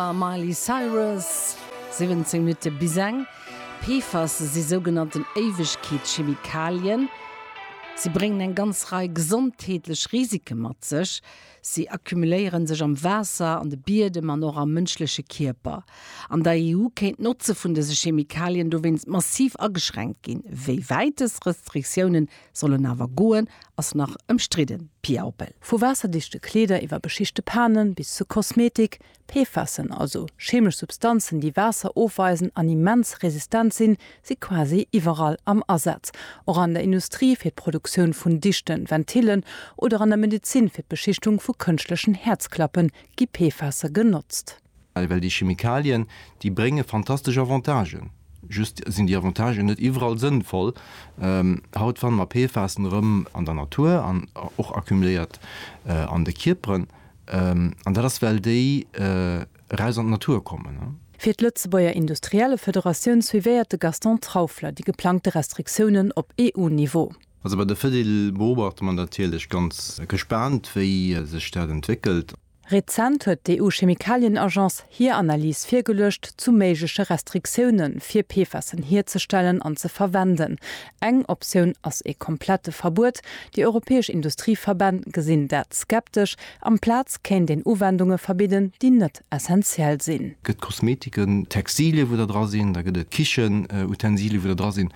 A Miley Cyrus, 17 Minutte bis eng. PFAS si sougenannten Éiwegkeetschemikalien. Si bréngen eng ganz Rei gesondheetlech Risike mat sech. Si accumuléiere sech am Waasser, an de Biedem an och am mënschleche Kierper. An der EU kéint d'Notze vun dëse Chemikalien dowéinst massiv ageschränkt ginn. Wéi wäit dës Restriktioune sollen awer goen, ass nach ëmstridden, Pia Oppel. Vu waasserdichte Kleeder iwwer beschichte Panen bis zu Kosmetik, PFASen, also cheemesch Substanzen, déi Waasser ofweisen an immens resistent sinn, si quasi iwwerall am Asaz. Och an der Industrie fir d'Produktioun vun dichten Ventillen oder an der Medezin fir d'Beschichtung vu kënschtlechen Häerzklappen gi PFASe genotzt. Well déi Chemikalien, déi brénge fantastesch Avantagen, just sinn déi Avantagen net iwwerall sënnvoll. Haut fanne mer PFASen erëm an der Natur an och accumuléiert an de Kierperen. An dat ass, well déi eraus an d'Natur kommen. Fir d'Lëtzebuerger Industriellefederatioun suivéiert de Gaston Trauffler déi geplangte Restriktiounen op EU-Niveau. Also bei der Fedil beobachte mer natierlech ganz gespaant, wéi sech dat entwéckelt. Rezent huet d'EU-Chemikalien-Agence hir Analys virgeluecht zu méigleche Restriktioune fir PFASen hierzestellen an ze verwenden. Eng Optioun ass e komplette Verbuet. Déi europäesch Industrieverbänn gesinn dat skeptesch. Amplaz kéint een Uwendunge verbidden, déi net essentiell sinn. Gëtt Kosmetiken, Textilien, wou der dra sinn, da gëtt et Kichenutensilien, wou der dra sinn.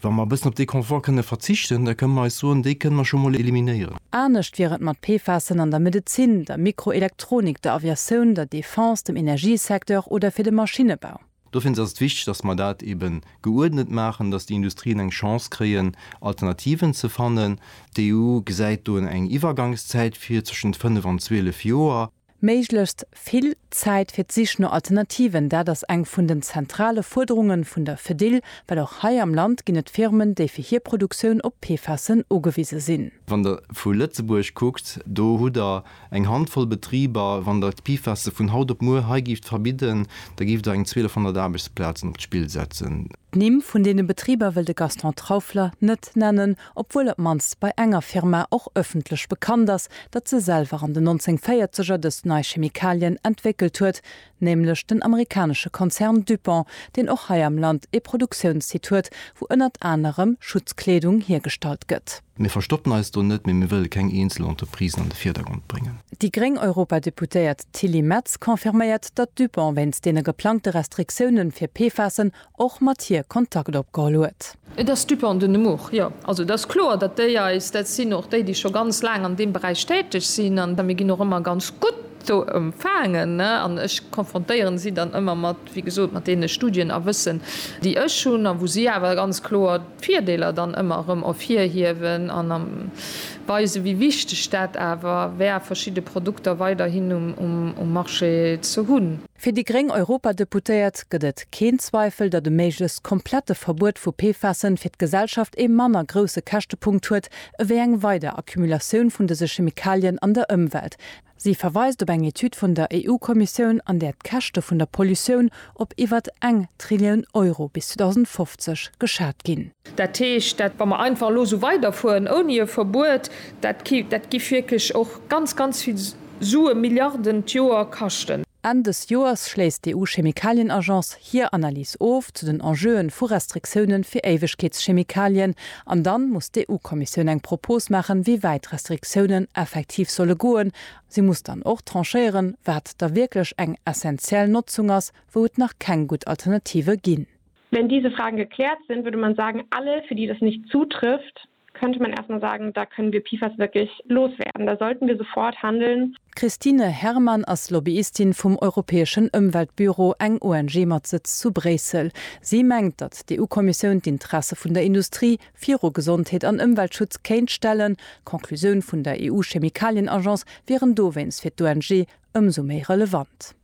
Wa mer e bëssen op dee Confort kënne verzichten, da kënne mer eis soen, dee kënne mer scho mol eliminéieren. Anescht wier et mat PFASen an der Medezin, der Mikroelektronik, der Aviatioun, der Defense, dem Energiesecteur oder fir de Maschinnebau. Dofir ass et wichteg, dass mer dat eebe geuerdnet maachen, dass déi Industrien eng Chance kréien, Alternativen ze fannen. D'EU gesäit do eng Iwwergangszäit vir, zwëschent fënnef an zwielef Joer. Méiglechst vill Zäit fir d'Sich no Alternativen, dat ass eng vun den zentrale Fuerderunge vun der Fedil, well och hei am Land ginn et Firmen, déi fir hir Produktioun op PFASen ugewise sinn. Wann Der vu Lëtzebuerg kuckt, do hutt Der eng Handvoll Betriber. Wann Der d'PFASe vun haut op muer hei gift verbidden, da giff Der eng 1200 Aarbechtsplazen op d'Spill setzen. D'Nimm vun deene Betriber wëll de Gaston Trauffler net nennen, obwuel op d'mannst bei enger Firma och ëffentlech bekannt ass, datt se selwer an den 1940er dës nei Chemikalien entwéckelt huet, nämlech den amerikanesche Konzern DuPont, deen och hei am Land ee Produktiounssite huet, wou ënnert anerem Schutzkleedung hiergestallt gëtt. Mir verstoppen eis do net, mee mir wëlle keng eenzel Entreprisen an de Virdergrond bréngen. Déi gréng Europadeputéiert Tilly Metz confirméiert, datt DuPont wéinst deene geplangte Restriktiounen fir PFASen och mat hir Kontakt opgeholl huet. Et ass Dupont de Nemours, jo. Also et ass kloer, datt déi eis, dat sinn och déi, déi scho ganz laang an deem Beräich täteg sinn, an mir ginn och ëmmer ganz gutt do empfaangen, an ech konfrontéieren si dann ëmmer mat, wéi gesot, mat deene Studien a Wëssen, déi ech hunn, a wou si awer ganz kloer d'Virdeeler dann ëmmer erëm ervirhiewen an weisen, wéi wichteg dat awer wär, verschidde Produkter weiderhin um Marché ze hunn. Fir déi gréng Europadeputéiert gëtt et keen Zweifel, datt e méiglechst komplette Verbuet vu PFASen fir d'Gesellschaft ee manner grousse Käschtepunkt huet ewéi eng weider Accumulatioun vun dëse Chemikalien an der Ëmwelt. Si verweist op eng Etüd vun der EU-Kommissioun, an där d'Käschte vun der Pollutioun op iwwert eng Trillioun Euro bis 2050 geschat ginn. Dat heescht, dat wa mer einfach elo esou weiderfueren ouni e Verbuet, dat gi wierklech och ganz, ganz vill. Sue Milliarden d'Joer kaschten. Enn dës Joers schléisst d'EU-Chemikalien-Agence hir Analys of zu den Enjeuen vu Restriktioune fir Éiwegkeetschemikalien an dann muss d'EU-Kommissioun eng Propos maachen, wéi wäit d'Restriktiounen effektiv solle goen. Si muss dann och tranchéieren, wat da wierklech eng essentiell Notzung ass, wou et nach keng gutt Alternative ginn. Wenn diese Fragen geklärt sind, würde man sagen, alle, für die das nicht zutrifft, könnte man erst mal sagen, da können wir PFAS wirklich loswerden, da sollten wir sofort handeln. D'Christine Herrmann ass Lobbyistin vum europäeschen Ëmweltbüro, eng ONG mat Sëtz zu Bréissel. Si mengt, datt d'EU-Kommissioun d'Interesse vun der Industrie viru Gesondheet an Ëmweltschutz kéint stellen. D'Conclusioun vun der EU-Chemikalien-Agence wieren dowéinst fir d'ONG ëmsou méi relevant.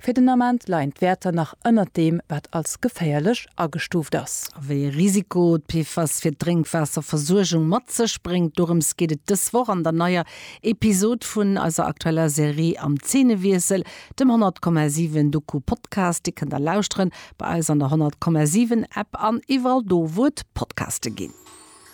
Fir den Ament leien d'Wäerter nach ënnert deem, wat als geféierlech agestuuft ass. A wéi e Risiko d'PFAS fir d'Drénkwaasserversuergung mat sech bréngt, dorëms geet et dës Woch an der neier Episod vun eiser aktueller Serie Am Zeenewiessel, dem 100,7 Doku-Podcast. Dee kënnt der lauschteren bei eis an der 100,7 App an iwwerall do, wou et Podcaste ginn.